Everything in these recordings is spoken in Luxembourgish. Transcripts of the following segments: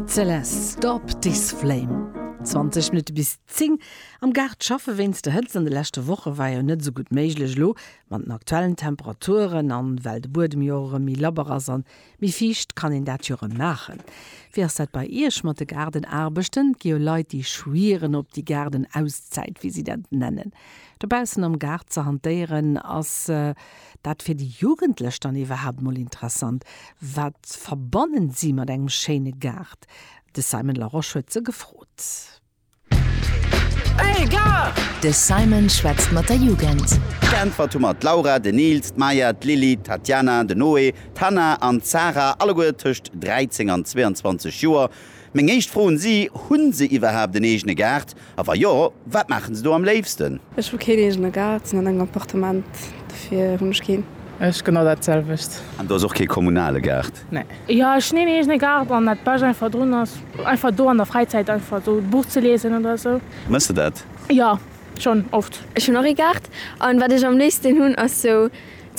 Celeste, Stop this flame! 20 Minutte bis 10 Am Gaart schaffe wéinst der Hëtzt an de leschte Woche war jo net esou gutt méiglech. Elo mat den aktuellen Temperaturen an well de Buedem jo och erëm méi labber ass an méi fiicht, kann een dat jo erëm maachen. Wéi ass dat bei Iech mat de Gaardenaarbechten? Et gi jo Leit déi schwieren op déi Gaardenauszäit, wéi si dat nennen. Dobaussen am Gaart ze hantéieren, ass dat fir déi Jugendlech dann iwwerhaapt mol interessant? Wat verbannen si mat engem schéine Gaart? De Simon Laroche huet se gefrot. De Simon schwätzt mat der Jugend. Geäntwert hu mer d'Laura, den Nils, d'Maya, d'Lili, d'Tatiana, den Noé, d'Hannah an d'Sarah, alleguer tëscht 13 an 22 Joer. Meng éischt Fro un si, Hunn se iwwerhaapt en eegene Gaart? A wa jo, wat maachen se do am léifsten? Ech hu keen eegene Gaart, sinn an engem Appartement, dofir hunn ech keen. Ech genau dat selwecht. An do ass och kee kommunale Gaart? Nee. Jo, ech hunn een eegene Gaart an dat bescht einfach drun ass einfach do an der Fräizäit einfach esou e Buch ze liesen oder esou. Mëss de dat? Jo, schonn oft. Ech hunn och ee Gaart an wat ech am léifsten hunn ass esou.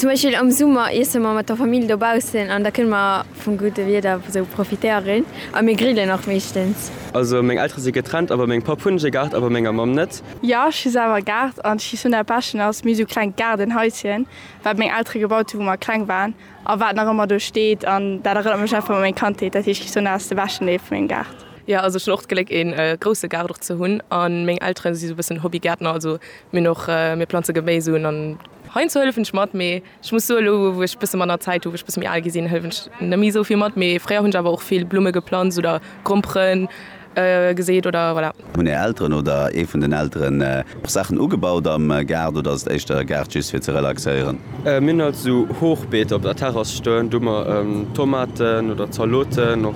Zum Beispill am Summer iesse mer mat der Famill dobaussen an da kënne mer vum gudde Wieder esou profitéieren a mir grillen och meeschtens. Also meng Eltere si getrennt a bei mengem Papp hunn ech e Gaart a bei menger Mamm net. Jo, ech hu selwer e Gaart an d'Schie Sonn'a Peschen ass méi esou klengt Gaardenhaischen, wat meng Eltere gebaut hunn, wou mer kleng waren a wat nach ëmmer do steet an dat erënnert mech einfach u meng Kandheet. Dat heescht, d'Schie Sonn'a ass de beschten Deel vu mengem Gaart. Jo, also ech hunn och d'Gléck e grousse Gaart och ze hunn an meng Eltere si esou e bëssen Hobbygäertner, also mir hunn och, mir planze Geméis un an. Heiansdo hëllefen ech mat, mee ech muss soen, elo wou ech bësse manner Zäit hu, wou ech bësse méi al gi sinn, hëllefen ech net méi esou vill mat. Mee fréier hunn ech awer och vill Blumme geplanzt oder Grompere geseet oder voilà. Hunn är Elteren oder ee vun den Elteren och Saachen ugebaut am Gaart oder ass et éischter e Gaart just fir ze relaxéieren? Mir hunn alt esou Hochbeeter op der Terrass stoen, do hu mer Tomaten oder Zaloten och.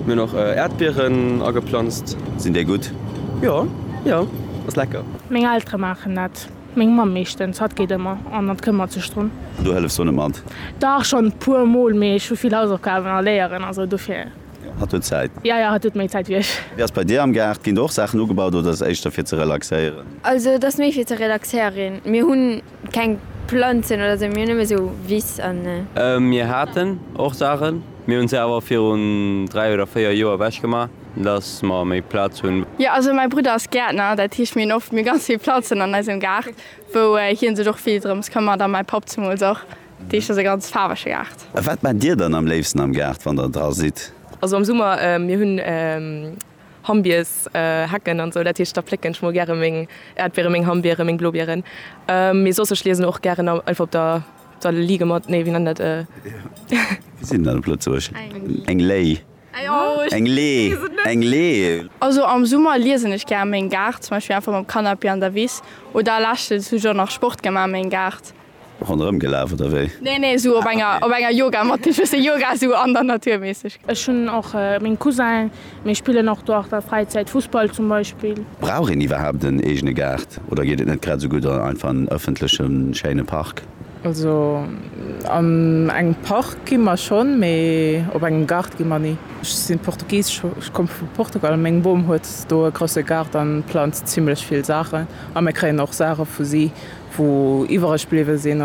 Mir hunn och Äerdbieren ageplanzt. Sinn déi gutt? Jo, jo, ass lecker. Meng Eltere maachen dat. Meng Mamm meeschtens, hatt geet ëmmer an hatt këmmert sech drun. An du hëllefs do net mat? Dach, schonn e puer Mol, mee ech hu vill Hausaufgaben a Léieren a sou, dofir. Jo, hatt huet Zäit. Jo, jo, hatt huet méi Zäit wéi ech. Wéi ass et bei dir am Gaart? Ginn do och Saachen ugebaut oder ass et éischter fir ze relaxéieren? Also et ass méi fir ze relaxéieren. Mir hunn keng Planzen oder sou, mir hunn nëmme sou Wiss an. Mir haten och Saachen, mir hu se awer virun dräi oder véier Joer ewechgemaach. Dass mer méi Plaz hunn. Jo, also mäi Brudder ass Gäertner, dat heescht mir hunn oft mir ganz vill Planzen an eisem Gaart, wou hien sech och vill drëms këmmert a mäi Papp zemools och. Dat heescht ass e ganz faarwege Gaart. A wat maacht Dir dann am léifsten am Gaart, wann Der dra sidd? Also am Summer, mir hunn Hammbiers, Hecken an esou, dat heescht da plécken ech mol gäre meng Äerdbiere, meng Hammbiere, meng Blobieren. Mee soss, ech liesen och gären einfach op der der Liege mat, nee wéi nennt een dat? Wéi seet een dat op Lëtzebuerg? Eng Léi. Eng Lee, eng Lee. Also am Summer liesen ech gär meng Gaart, zum Beispill einfach mam Canapé an der Wiss oder leschtens hu ech och nach Sport gemaach meng Gaart. Ronderëm gelaf oder wéi? Nee nee sou op enger op enger Yogamatt gin schwësse Yoga sou an der Natur mässeg. Ech hun och meng Cousinen, mir spillen och do an der Fräizäit Fussball zum Beispill. Brauch een iwwerhaapt en eegene Gaart oder geet et net grad sou gutt einfach an ëffentlechen schéine Park? Also an engem Park gi mer schonn, mee op engem Gaart gi mer ni. Ech si Portugisesch, ech komme vu Portugal. Meng Bom huet do e grousse Gaart a planzt zimlech vill Saachen. A mir kréien och Saache vu si, wou iwwereg bliwwe sinn.